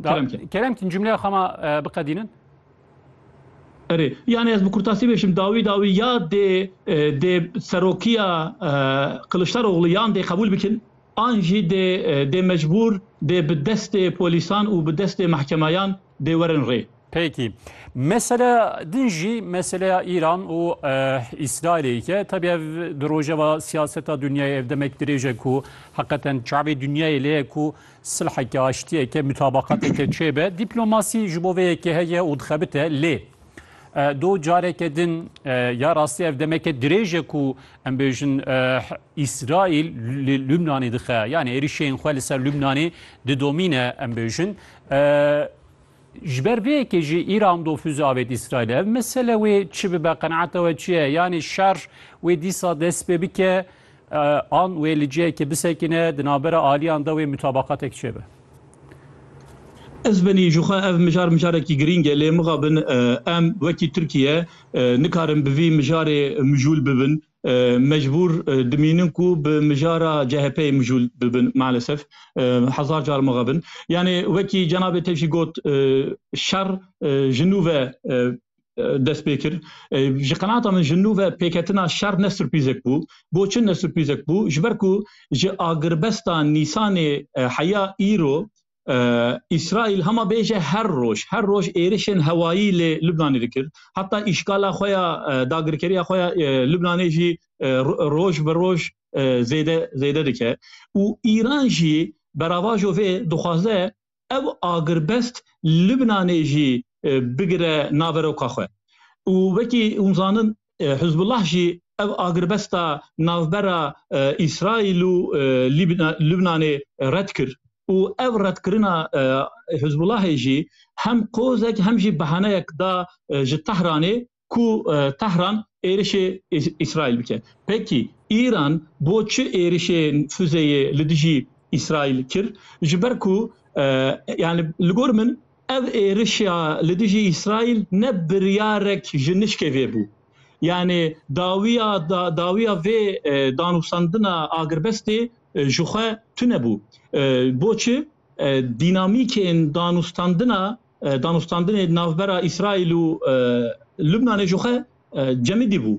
Keremkin. Keremkin cümleya xama e, biqedînin. Erê, yani ez bi kurtasî bêşim dawî dawî ya dê e, dê serokiya e, Kiliçdaroğlu yan dê qebûl bikin an jî dê e, dê mecbûr dê bi destê polîsan û bi destê mehkemayan dê werin rê. Peki. Mesela din jî meselaya Îran û Îsraîlê ye. Tebî ev di rojeva siyaseta dinyayê ev demek dirêj e ku heqeten çavê dinyayê lê ye ku silheke, aştiyeke, mutabaqateke çêbe. Dîplomasî ji bo vê yekê heye û dixebite lê دو جارێکە din ya rastî ev demeke dirêj e ku em bêjin Îsraîl li Lubnanê dixe yanî êrişên xwe li ser Lubnanê didomîne em bêjin Ji ber vê yekê jî Îran dofûzê avêt Îsraîlê. Ev mesele wê çi bibe, qenaeta we çi ye? Yanî şer wê dîsa dest pê bike an wê li cihekê bisekine, di navbera aliyan de wê mutabeqatek çêbe? Ez benî ji xwe ev mijar mijarekî girîng e lê mixabin em wekî Tirkiye nikarin bi vî mijarê mijûl bibin. mecbûr dimînin ku bi mijara CHP'ê mijûl bibin malesef hezar car maxe bin. Yanê wekî cenabê te jî got şer ji nû ve dest pê kir. Ji qenaata min ji nû ve pêketina şer ne surprîzek bû. Bo çi ne surprîzek bû? Ji ber ku ji agirbesta Nîsanê heya îro Îsraîl hema bêje her roj her roj êrişên hewayî lê Lubnanê dikir. Heta îşgala xwe ya dagirkeriya xwe ya Lubnanê jî roj bi roj zêde zêde dike û Îran jî beravajo vê dixwaze ev agirbest Lubnanê jî bigire naveroka xwe û wekî hûn zanin Hizbullah jî ev agirbesta navbera Îsraîl û Lubnanê red kir û ev redkirina Hizbullahê jî hem qozek hem jî behaneyek da ji Tehranê ku Tehran êrişê Îsraîl bike. Pekî Îran bo çi êrişê fuzeyê li dijî Îsraîl kir? Ji ber ku yani li gor min Ev êrişa li dijî Îsraîl ne biryarek ji nişkê vê bû. Yanê dawiya dawiya vê danûstandina agirbestê ji xwe tune bû. Boçi dînamîkên danûstandina danûstandinê navbera Îsraîl û Lubnanê ji xwe cemidî bû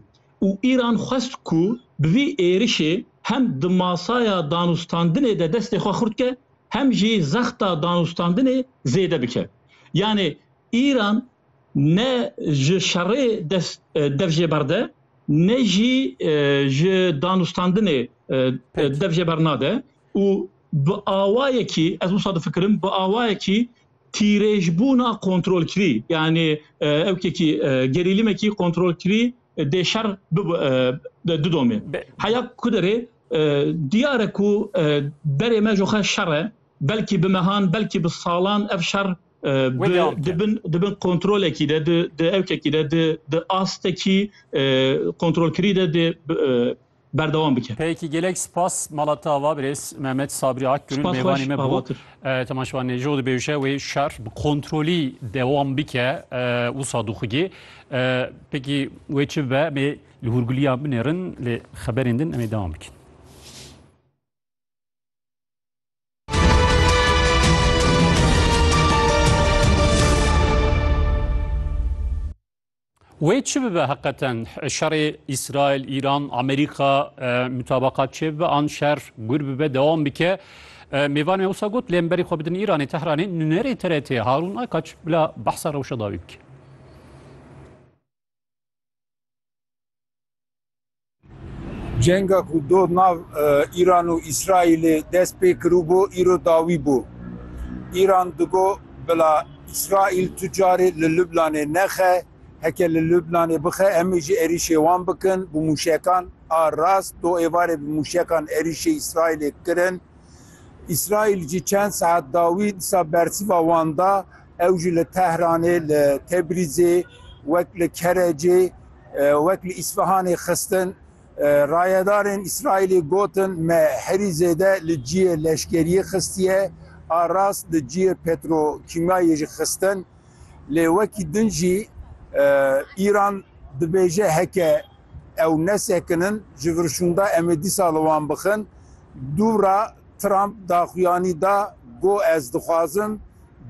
û Îran xwest ku bi vî êrişê hem di masaya danûstandinê de destê xwe xurt ke, hem jî zexta danûstandinê zêde bike. Yanê Îran ne ji şerê dest dev jê berde ne jî ji danûstandinê dev jê bernade û bi awayekî ez wisa difikirim bi awayekî tîrêjbûna kontrolkirî yanê ewkekî gerîlîmekî kontrolkirî dê şer bidomê. Heya ku derê Diyar e ku berê me ji xwe şer e. Belkî bi mehan, belkî bi salan ev şer di bin kontrolekî de, di ewkekî de, di astekî kontrolkirî de dê berdewam bike. Peki gelek spas mala te ava birêz Mehmet Sabri Akgül'ün mêvanê me bû. Tema şivan neco di bêje wê şer bi kontrolî dewam bike wisa dixugê. Peki wê çi be mê Li Hûrguliya binêrin lê xeberên din em ê dewam bikin. Wê çi bibe heqeten şerê İsrail, İran, Amerika mutabakat çê bibe an şer gur bibe devam bike. Mêvan me wisa got lêm berî xwe bidin İranê Tehranê nunerê TRT Harun Aykaç bila behsa rewşa dawî bike. Cenga ku do nav Îran û Îsraîlê dest pê kiribû îro dawî bû. Îran digo bila Îsraîl tu carê li Lubnanê nexe, heke li Lubnanê bixe em ê jî êrîşê wan bikin bi mûşekan a rast do êvarê bi mûşekan êrîşê Îsraîlê kirin. Îsraîl jî çend saet dawî disa bersiva wan da. Ew jî li Tehranê, li Tebrîzê, wek li Kerecê, wek li Îsfihanê xistin. Rayedarên Îsraîlê gotin me herî zêde li cihê leşkeriyê xistiye, a rast li cihê petrokîmyayê jî xistin. Lê wekî din jî Îran dibêje heke ew nesekinin ji vir şûnda em ê dîsa li wan bixin. Dû ra Trump daxuyanî da got ez dixwazim,